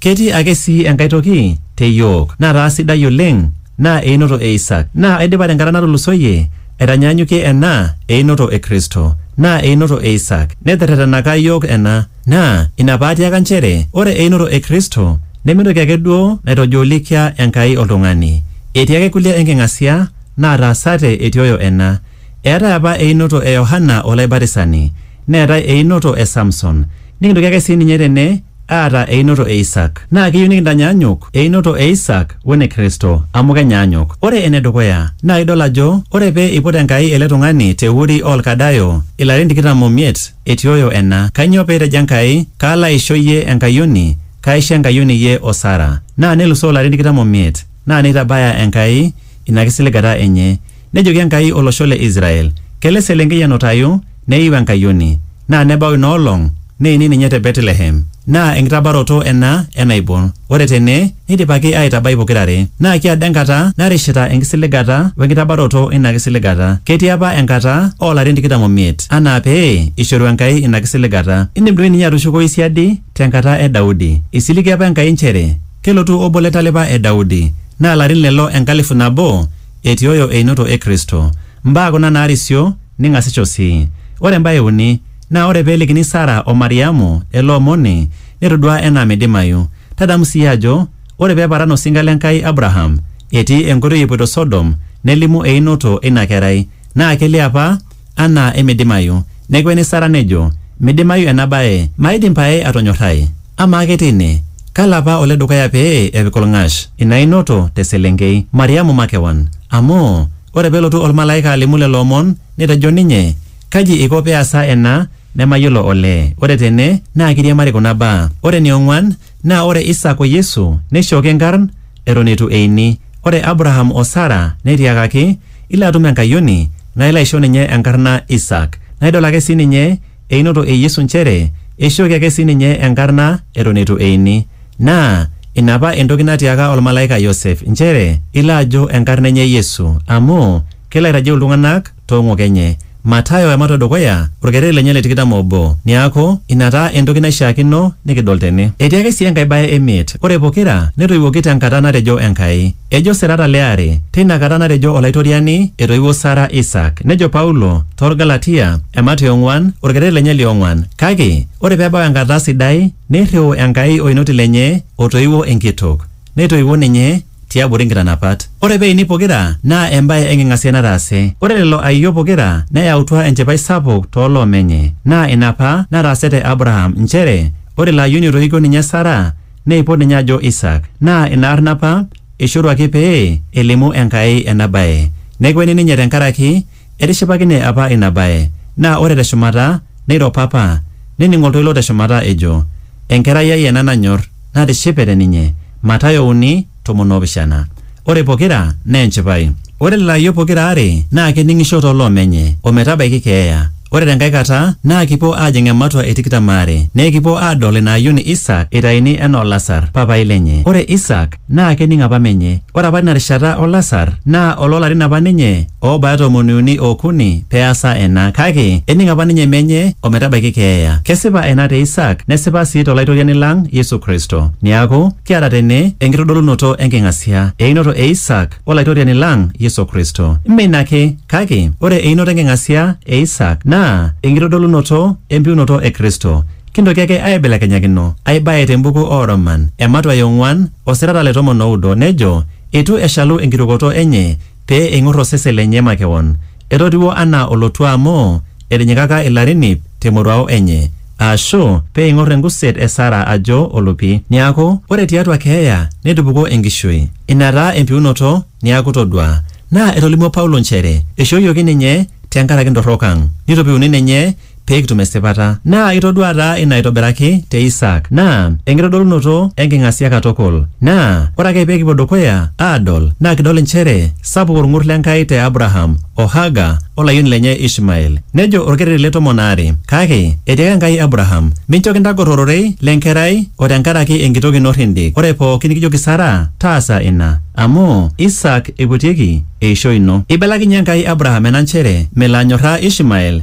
Ketii ake sii enkae toki te iyiook nataa sidai oleng naa einoto e Isak. Naa aidipa tenkata natulusoyie aitanyaanyukie ena einoto e Kristo. Naa einoto e Isak. Neterretenaka iyiook ena. Naa ina paatiaka nchere ore einoto e Kristo neme entoki ake duo naitojoolikia Enkai oltung'ani. Etii ake kulie enking'asia naataasate etioyo ena. Eetae apa einoto e Yohana Olaibatisani. Neetae einoto e Samson. Nikintoki ake sii ninye tene aata einoto e Isaak. Naa keyieu nikintanyaanyuk einoto e Isaak o ene Kristo amu kenyaanyuk. Ore ene dukuya naa idol ajo ore pee eiput Enkai ele tung'ani te Uri oo Lkadayo ilarin tikitam o miet etioyo ena. Kainyoo pee etejo Enkai, Kaalo aisho iyie enkayioni, kaaisho enkayioni iyie o Sara. Naa nelusoo ilarin tikitam o miet naa neitabaya Enkai ina kisiligata enye. Nejoki Enkai olosho le Israel, Kelo eselenkei enutayu, neiu enkayioni, naa nebau ina olong, neini ninye te Betlehem. Naa enkitabaroto ena e naibon. Ore tene neidipaki aaitabai pokira are. Naa kiado enkata narishita enkisiligata o enkitabaroto e ina kisiligata. Ketii apa enkata oo larin tikitam o miet anaa pee eishoru Enkai ina kisiligata. Indim doi ninye atushukoyu siadi te nkata e Daudi. Eisiligie apa Enkai nchere kelotu obo le ntalipa e Daudi, naa larin lelo enkalifu nabo etioyo einoto e Kristo. Mbaa kuna naarisio ning'asisho sii. Ore embae e uni, naa ore pee elikini Sara o Mariamu ele omoni, netoduaa enaa meidimayu. Tadamu sii ajo ore pee eparan osinka le Nkai Abraham etii enkoitoi epoito Sodom nelimu einoto eina kerai naa kelio apa anaa emeidimayu. Nekueni Sara nejo, Meidimayu ena bae, maidim pae atonyorrai. Amaa ake teine, kalo apa ole dukuya pee epik olng'ash ina inoto te selenkei, Mariamu makewan? Amu, ore pee elotu olmalaika alimu lelo omon, netejo ninye, Kaji eiko pee easa ena nemayiolo olee? Ore tene naa keiriamari kuna baa. Ore ene ong'uan, Naa ore Isak o Yesu neishooki nkarn eton eitu eini. Ore Abraham o Sara netiakaki, Ilo atum enkayioni, naa ilo aisho ninye enkarna Isak. Naa idol ake sii ninye einoto e Yesu nchere eishooki ake sii ninye enkarna eton eitu eini. Naa ina apa entoki natiaaka olmalaika Yosef nchere ilo ajo enkarna enye Yesu amu kelo aitajeu iltung'ana too ng'ok enye. Matayo ematua e dukuya, olkereri lenye le tikitam o obo. Neaku, ina taa entoki naishiakino nikidol tene. Etii ake sii enkae bae e miet, ore pokira netoiwuoki te nkata natejo Enkai. Ejo serata le are, Teina kata natejo Olaitoriani, etoiwuo Sara Isaak. Nejo Paulo too Lgalatia, emat e ong'uan, olkereri lenye li ong'uan, Kake ore pee ebau enkata sidai, neirriu Enkai Oinoti lenye otoiwuo enkitok, neitoiwuo ninye, tiabori nkitanapat. Ore peini pokira naa embae enking'asia nataase. Ore lelo aiyio pokira neyautua enchipai sapuk too loo menye. Naa ina apa nataase te Abraham nchere ore ilo ayioni oitoikio ninye Sara neipot ninye ajo Isaak. Naa ina arna apa eishoruaki pee elimu Enkai ena bae. Nekueni ninye tenkaraki Etishipakine apa ina bae, naa ore te shumata neiro papa, nening oltoilo te shumata ejo, Enkerai ai ena nanyor, natishipe te ninye. Matayo uni, tomon oo pishana. Ore pokira naa enchipai. Ore lelo ayiok pokira aare naa kening'isho too loo menye, o metabaiki keeya. Ore te nkae kata naa kipuo aajing ematua e tikitam aare, nekipuo aadol ina ayioni Isaak eitayuni enoo Lasar, papai lenye. Ore Isaak. naa kening apa menye. Ore apa ina rishata o lasar naa oloo larin apa ninye oobaya tomoni uni o okuni pee easa ena. Kake ening apa ninye menye o metabaiki keeya. Kesipa ena te Isaak nesipa sii to Laitoriani lang Yesu Kristo. Neaku, kiata tene enkitodolunoto e nking'asia, einoto e Isaak o Laitoriani lang Yesu Kristo. Mme ina ake, kake ore einoto e nking'asia e Isaak naa enkitodolunoto e mpiunoto e Kristo. Kintoki ake aaibelekenyakino ai bae te mbuku oo Roman, ematua e ong'uan, osirata le tomon o udo, nejo, Eitu eshalu enkirukoto enye pee eing'or osesen lenye makewon. Etotiwuo anaa olotua amu etinyikaka ilarin iip te moruao enye. Aashu, pee eing'or enguset e Sara ajo olupi. Neaku, ore tiatua keeya netupukuo enkishui. Ina taa empiunoto, neaku todua. Naa etolimuo Paulo nchere eishooyioki ninye te nkaraki ntorrok ang. Neitopiuni ninye pee kitum esipata. Naa itodua taa ina aitobiraki te Isaak, naa enkitodolunoto e nking'asia katukul. Naa ore ake pee kipuo dukuya aadol naa kidol inchere sapuk olng'ur le Nkai te Abraham o Haga o layioni lenye Ishmael. Nejo olkereri le tomon aare, Kake etiaka Enkai Abraham, Mincho kintagor ororei le nkerai o te nkaraki enkitok ino rrindik, ore pooki nikijoki Sara, taasa ina, amu Isaak eiputieki eishoi ino. Eibelekinyie Enkai Abraham ena nchere melo anyorraa Ishmael.